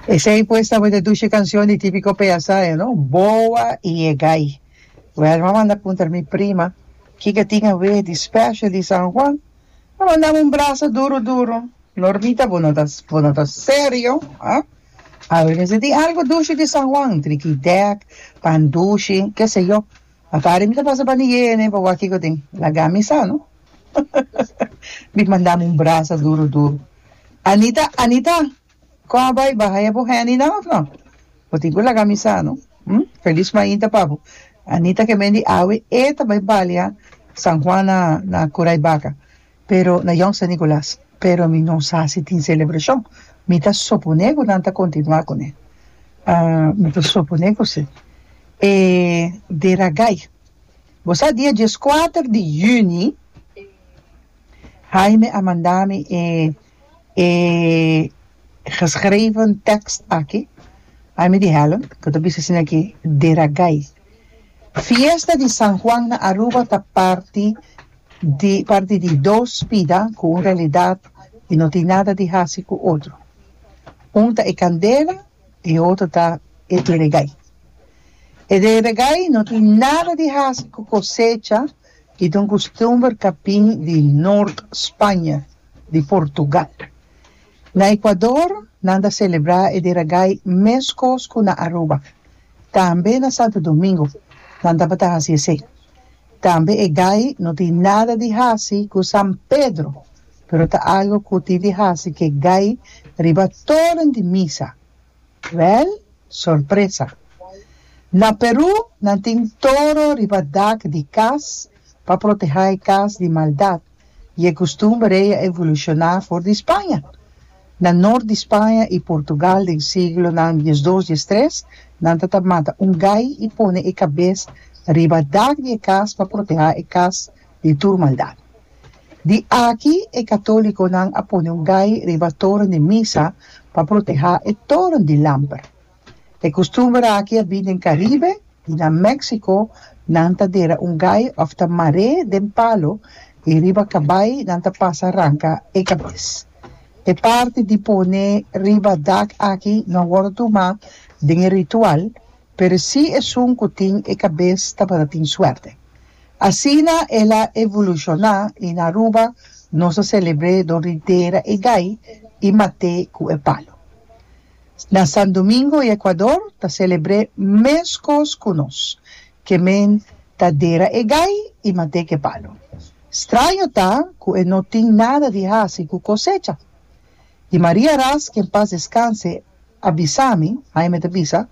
Esei pues tabata dushi cancion di tipico peasayo, no? Boa y Yegay. Well, m'a manda puntra na mi prima, kico a tin awe di special di San Juan? A mandam un brasa duro duro, Normita, bo no ta, bo no ta serio, ah? Awe mes a tin algo dushi di San Juan, trikidek, pan dushi, keseyo. A Karen mi ta pasa pa Nigea ene pa wak kiko tin laga mi sa no mi mandam un brasa duro duro Anita Anita kon a bai baha ya bo handy nan of no bo tin ku laga mi sa no hm felis mainta pa bo Anita ke mendi awe e ta bai balia San Juan na na Kurai Baka. Pero na Jong San Nicolas. Pero mi no sa si tin celebracion. Mi ta supone cu nan ta continua con e. Mi ta supone cu si. E Deragai. Bo sa dia diescuater di Juni Jaime a manda mi e e geschreven tekst aki. Jaime di Helen cu ta bisa asina aki, Deragai. Fiesta di San Juan na Aruba ta parti di parti di dos bida cu un realidad y no tin nada di haci cu otro. Un ta e candela y e otro ta e deregay. E deregay no tin nada di haci cu cosecha y ta un custumber ca bin di Noord Spanje, di Portugal. Na Ecuador nan ta celebra e deregay mescos cu na Aruba. Tambe na Santo Domingo nan tabata hasi esei. Tambe e gai no tin nada di hasi ku San Pedro, pero ta algu ku tin di hasi ku e gai riba toren di misa. Wèl, sorpresa! Na Perú nan tin toro riba dak di kas pa protehá e kas di maldat. I e kustumber ei a evolushoná for di Spaña. Na nort di Spaña i Portugal den siglonan diesdos, diestres, nan tabata mata un gai i pone e kabes riba dak di e kas pa protehá e kas di tur maldat. Di aki e katólikonan a pone un gai riba toren di misa pa protehá e toren di lamper. E kustumber aki a bin den Karibe i na Mèksiko nan ta dera un gai òf ta mar'é den palo i riba kabai nan ta pasa ranka e kabes. E parti di pone riba dak aki no a wòrdu tumá den e ritual, pero sí esun ku tin e kabes tabata tin suerte. Asina el a evolushoná i na Aruba nos a selebr'é dor di dera e gai i mat'é ku e palo. Na San Domingo i Ekuador ta selebr'é meskos ku nos, ke men ta dera e gai i mat'é ke palu. Straño ta ku e no tin nada di hasi ku kosecha. Di Maria ras, ke en pas deskanse, a bisa mi, Haime ta bisa,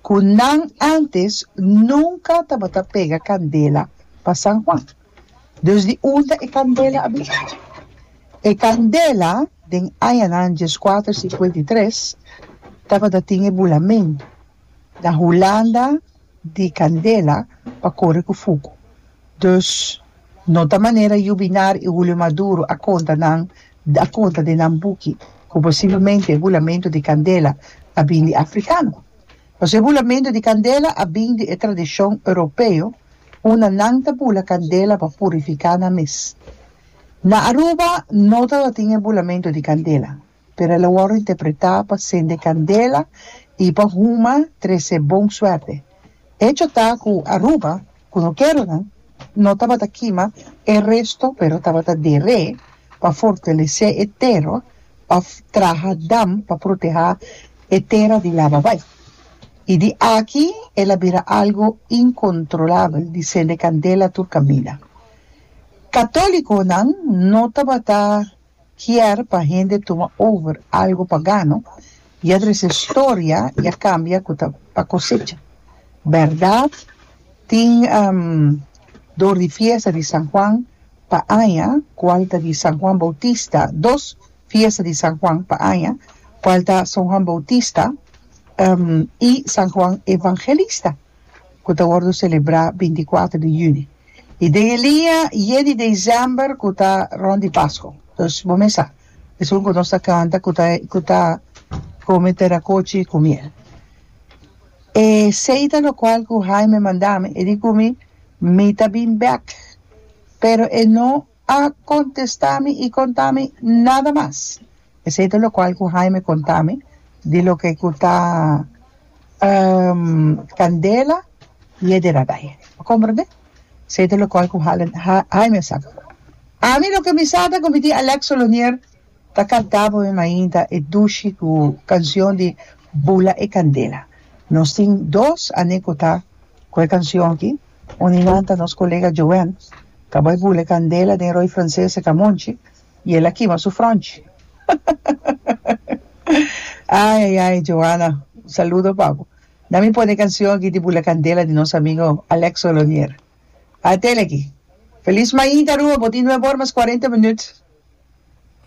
ku nan ántes nunka tabata pega kandela pa San Juan. Djus di unta e candela a bira. E candela den añanan dieskuater sinkuenta i tres tabata tin e bulamen na hulanda di candela pa kore ku fuku. Djus no ta manera yu binar i Hulio Maduro a konta nan a konta den nan buki ku posiblemente e bulamentu di candela a bin di afrikano. Nos e bulamentu di kandela a bin di e tradishon europeo unda nan ta bula kandela pa purifiká nan mes. Na Aruba no tabatin e bulamentu di kandela, pero el a wòrdu interpretá pa sende kandela i pa huma trese bon suerte. Hecho ta ku Aruba ku no keronan no tabata kima e resto pero tabata der'é pa fortalesé e tera pa traha dam pa protehá e tera di laba bai i di aki el a bira algu inkontrolabel di sende kandela tur kaminda. Katóliconan no tabata. kier pa hende tuma over algo pa gano y a trece storia y a cambia cu ta pa cosecha. Berdad tin door di fiesta di San Juan pa aña cual ta di San Juan Bautista, dos fiesta di San Juan pa aña cual ta San Juan Bautista y San Juan Evangelista. ku ta wòrdu selebrá binti kuater di yüni i den e liña ye di desèmber ku ta rònt di Pasko. Anto bo mes sa esun ku nos ta kanta ku ta ku ta kome terakochi ku miel. E seita lokual ku Haime mandami e di ku mi mi ta bin bèk pero e no. a contesta mi y conta mi nada mas. Esey ta locual cu Jaime conta mi di loke cu ta candela y e deraday. Bo comprende? Esey ta locual cu Jaime a sabi. Ami loke mi sa ta cu mi tin Alex Solonier ta canta pa mi mainta e dushi cu cancion di Bula e candela. Nos tin dos aney cu ta cu e cancion aki. Un di nan ta nos kolega Joen. Kaba e bule kandela den roi franses e kamonchi y el a kima su fronchi. Ay ay ay Joana un saludo pa bo. Na mi pone e kancion aki di bule kandela di nos amigo Alex Olonier. Atele aki. Feliz mainta Aruba bo tin nueve or mas cuarenta minut.